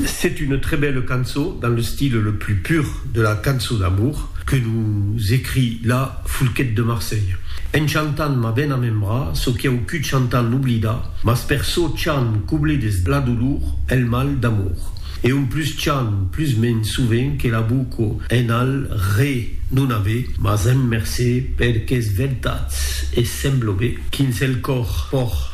C'est une très belle cançon dans le style le plus pur de la cançon d'amour que nous écrit la Foulquet de Marseille. En chantant m'a ben amembrar çò qui au cud chantant l'oblidar, mas per çò chant coble des la dolor el mal d'amour. E on plus chant plus men sovent que la boco en al re non a ve, mas en mercé per qu'es vertats e semblo be quins el cor por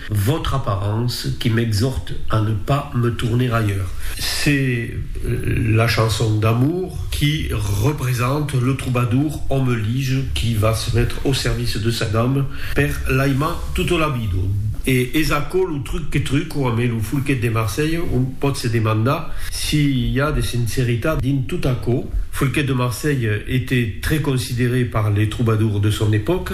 Votre apparence qui m'exhorte à ne pas me tourner ailleurs. C'est la chanson d'amour qui represente le troubadour homme lige qui va se mettre au service de sa dame per l'aimar tota la vida. E es aquò lo truc que truco amé lo Folquet de Marselha, on pòt se demandar si i a de sinceritat dins tot aquò. Folquet de Marselha était très considéré par les troubadours de son époque.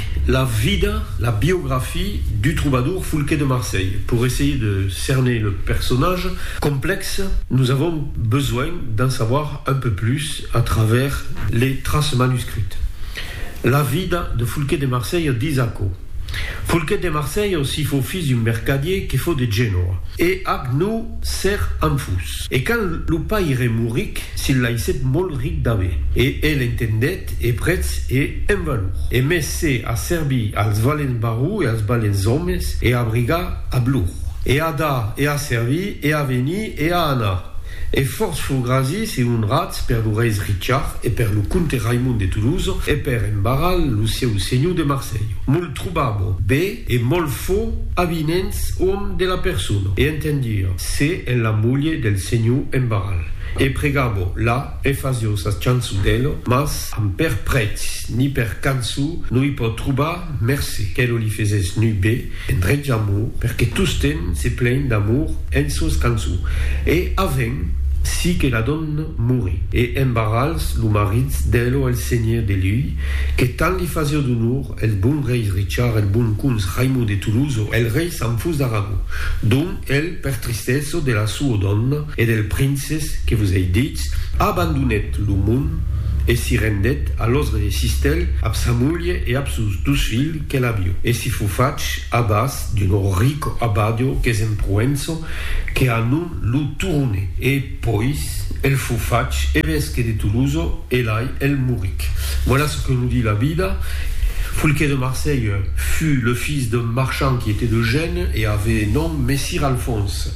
La vida, la biographie, du trobador Foulquet de Marseille. Pour essayer de cerner le personnage complexe, nous avons besoin d'en savoir un peu plus à travers les traces manuscrites. La vida de Foulquet de Marseille dis aquò, Foulquet de Marseille aussi fau fils d'un mercadier que fau de Genoa, e ac nou ser enfús. E quand lo paire mouric, se'n laissèt molt ric d'aver, e el entendèt, e prètz e en valor, e mès se a servir als valents barrons e als balents òmes, e a brigar ab lor, e a dar, e a servir, e a venir, e a anar, e fòrts fur grasis e onrats per lo reis Richard, e per lo comte Raimond de Toulouse, e per en Barral, lo sieu senhor de Marselh. Molt trobabo bè e molt fò avinents òm de la persona, e entendir se en la mulher del senhor en Barral, e pregabo la, E fasio sa chançon d'Elo, mas amb per prètz ni per canço no i pò trobar mercé qu'Elo li fesés nu be endretja mo perque tosten se plegn d'amor en sos canço e avent si que la donna morí e embarrals lo maritz d'Elo el senhé de lui que tant li fasio d'onor el bon rei Richard el bon cons Raimond de Toulouse el rei Sanfus d'Aragó dont el per tristèso de la soa donna E del princes que vos ei ditz, Abandonèt lo mond e si rendèt a los resistèl ab sa mulhe e ab sos dus filh que l'abio, e si fo fach abàs d'un rico abadio qu'es en Proenço, que a non lo Turonè. E pois el fo fach evesque de Toloso e lai el moric. Voilà ce que nous dit la vida. Foulquet de Marseille fut le fils d'un marchand qui était de Gène e avait nom Messire Alphonse.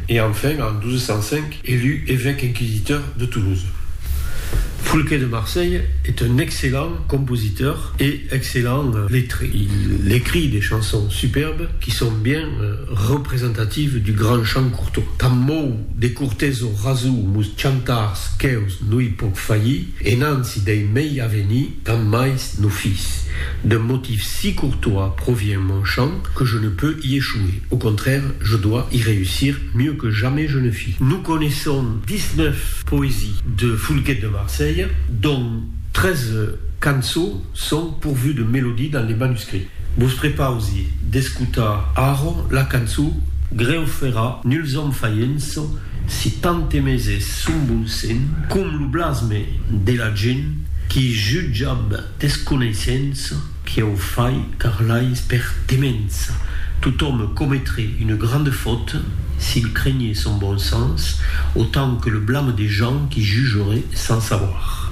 E enfin, en 1205, elu evèque inquisiteur de Toulouse. Foulquet de Marseille est un excellent compositeur et excellent lettré. Il écrit des chansons superbes qui sont bien representatives du grand chant courtot. Tant mou de courtes o rasou mos chantars que'us no i pòc faillir, e nansi dei mei avenir, Tant mais no fis d'un motif si courtois provient mon chant que je ne peux y échouer, au contraire je dois y réussir mieux que jamais je ne fis. Nous connaissons 19 poésies de Foulquet de Marseille, dont 13 cançaux sont pourvus de mélodies dans les manuscrits. Vos prepausi d'escotar ara la cançó Greu fera nuls òmes faients si tant aimèses son bon sent com lo blasme de la gent. Qui jutge ab desconeissença, qui au fai car l'ais per demença. Tot òme cometre une grande faute, s'il crenhe son bon sens, autant que le blame des gens qui jugeraient sans savoir.